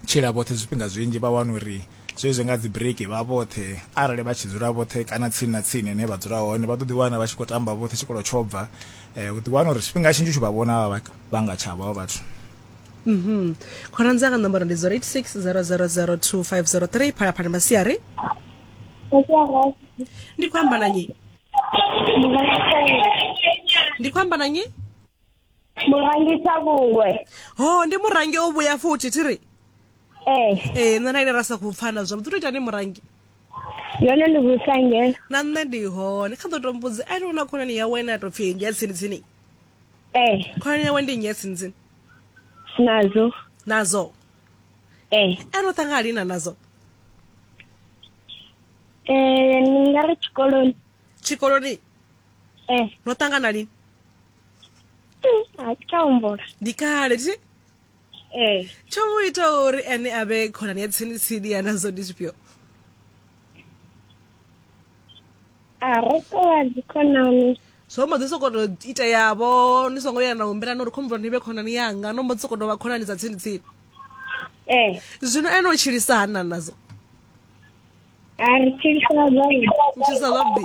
tshila vhoṱhe zwifhinga zwinzhi vha wana uri zwezwi nga dzi break vha vhoṱhe arali vha tshi dzula vhoṱhe kana tsini na tsini ine vha dzula hone vha ḓo ḓi wana vha tshi khou tamba vhoṱhe tshikolo tsho bva um u ḓi wana uri tshifhinga tshinzhi u tshi vha vhona vha nga tsha vha vhathu mhm khonani dzanga nomboro ndi 0860002503 phalaphala masiari ndi khou amba na nyi ndi khou amba na nyi murangisa vhungwe ho ndi murangi o vhuya futhi thi ri ee eh. ee eh, nṋe na ine ra sa khou pfana zwavhuḓi tou itani murangi yone ndi vhusange na nṋe ndi hone kha ḓo to mbudzi ane u na khonani yawe ine a tou pfhi ndi ya tsini tsini ee eh. khonani yawe ndi nnyi ya tsini tsini nazo nazo ee ane u ṱanga alina nazo ee ni nga ri tshikoloni tshikoloni ee no ṱangana lini a thi tsha humbula ndi kale thi ee tsho mu ita uri ene a vhe khonani ya tsini tsini ya nazwo ndi zwifhio a ro tovha dzikhonani zwo mbo ḓi sokoto ita yavho ni songo ya na humbelana uri khombula ni vhe khonani yanga no mbo ḓi sokoto vha khonani dza tsini tsini ee zwino ene u tshilisa hani na nazwo a ri tshilisana zwavhuḓi u tshilisa zwavhuḓi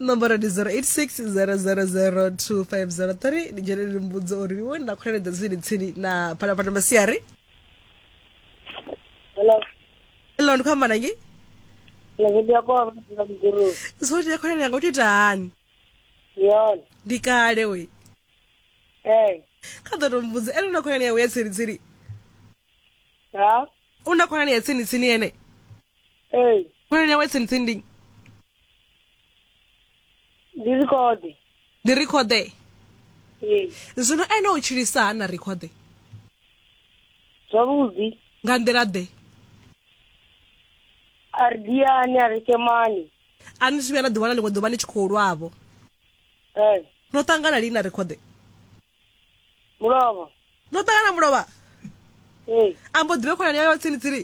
nomboro ndi 0860002503 ndi dzhene ndi mbudzo uri iwe nda khweledza tsini tsini na phalaphala masiari Hello. elo ndi khamba nangi Ngithi yakho mfika mguru. zoti yakhwelela yanga utita hani Yona. ndi kale we Eh. kha ḓo to mbudza elo na khwelela yawe ya tsini tsini Ha? u na khonani ya tsini tsini ene ee khonani yawe tsini tsini ndi ndi rekhode ndi rekhode ee zwino ene u tshilisa ha na rekhode zwavhuḓi nga nḓila ḓe a ri diani a ri kemani a ni zwi vhuya na ḓiwana ḽiṅwe ḓuvha ni tshi khou lwavho ee no ṱangana lini na rekhode mulovha no ṱangana mulovha ee a mbo ḓivhe khonani yayo tsini tsini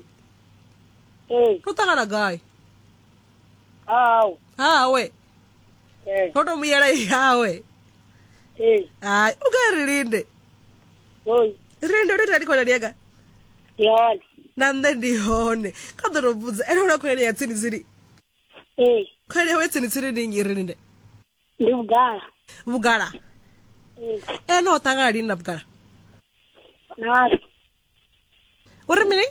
ee no ṱangana gai hau hawe ee no to muyela yawe ee hai u nga ri linde hoi linde ndo itani khonani yanga yona na nṋe ndi hone kha ḓo to vhudza ene una khonani ya tsini tsini ee khonani yawe ya tsini tsini ndi nnyi ri linde ndi vhugala vhugala Eh, ene o ṱangana lini na vhugala nasi u ri mini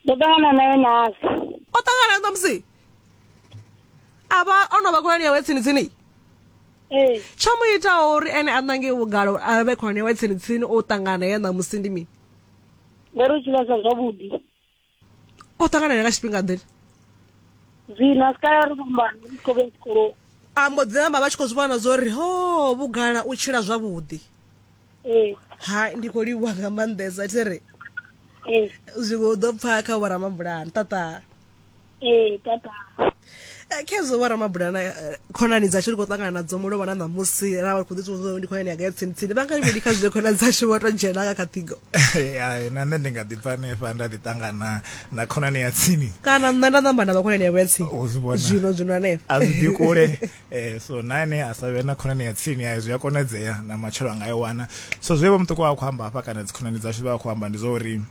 ndo ṱangana naye nasi o ṱangana na musi a vha o no vha khonani yawe tsini tsini ee tsho mu itaho uri ene a ṋange vhugala uri a vhe khonani yawe tsini tsini o ṱangana ye na musi ndi mini ngori u tshi vhesa zwavhuḓi o ṱanganana nga tshifhinga ḓe zwino a si kale ri fhambana ndi khou vhe tshikoloni a mbo ḓi namba vha tshi khou zwi vhona zwo ri ho vhugala u tshila zwavhuḓi ee hai ndi khou livhuwa nga maanḓesa thi ri ee zwiṅwe u ḓo pfa kha vhoramabulani ṱaṱa ee tata eh, khezwo wa ramabula na eh, khonani dzashu ri khou ṱangana nadzo mulovha na ṋamusi ra vha khou ḓi tsivhudza ndi khonani yanga ya tsini tsini vha nga ri mini kha zwine khonani dzashu vho to dzhena nga kha ṱhingo Ai, na nṋe ndi nga ḓi bva hanefha nda ḓi ṱangana na khonani ya tsini kana nṋe nda ṋamba na vhakhonani yavho ya tsini U zwi vhona. zwino zwino hanefha a zwi ḓi kule eh, so na ene a sa vhe na khonani ya tsini ayo zwi a konadzea na matshelo a nga i wana so zwe vha muṱuku wa khou amba hafha kana dzikhonani dzashu vha khou amba ndi zwa uri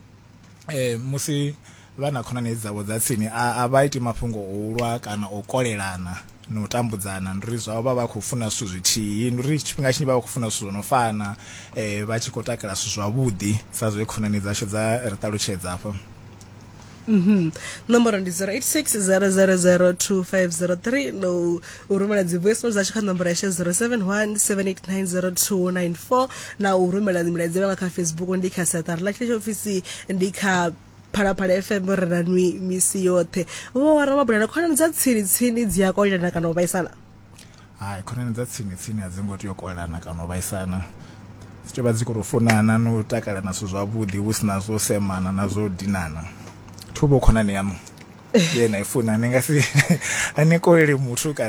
eh musi vha na khonani dzavho dza tsini a vha iti mafhungo o ulwa kana o kolelana na u tambudzana ndi uri zwavho vha vha khou funa zwithu zwithihi ndi uri tshifhinga tshinzhi vha vha khou funa zwithu zwo no fana eh vha tshi khou takala zwithu zwavhuḓi sa zwe khonani dzashu dza ri ṱalutshedza afho Mm -hmm. Nomboro ndi 0860002503 no u rumela dzi voice note dzashu kha nomboro yashe 0717890294 na u rumela milaedza nga kha facebook ndi kha saṱari ḽa tshetsho ofisi ndi kha phalaphala fm ri na nwi misi yoṱhe vho wara mabulana khonani dza tsini tsini dzi a kolelana kana u vhaisana hai khonani dza tsini tsini a dzi ngo tea u kolelana kana u vhaisana dzi tea vha dzi khou tou funana na u takala na zwithu zwavhuḓi hu si na zwo semana na zwo dinana thuvho khonani yaṋu ye na i funa ni nga si a ni koleli muthu kana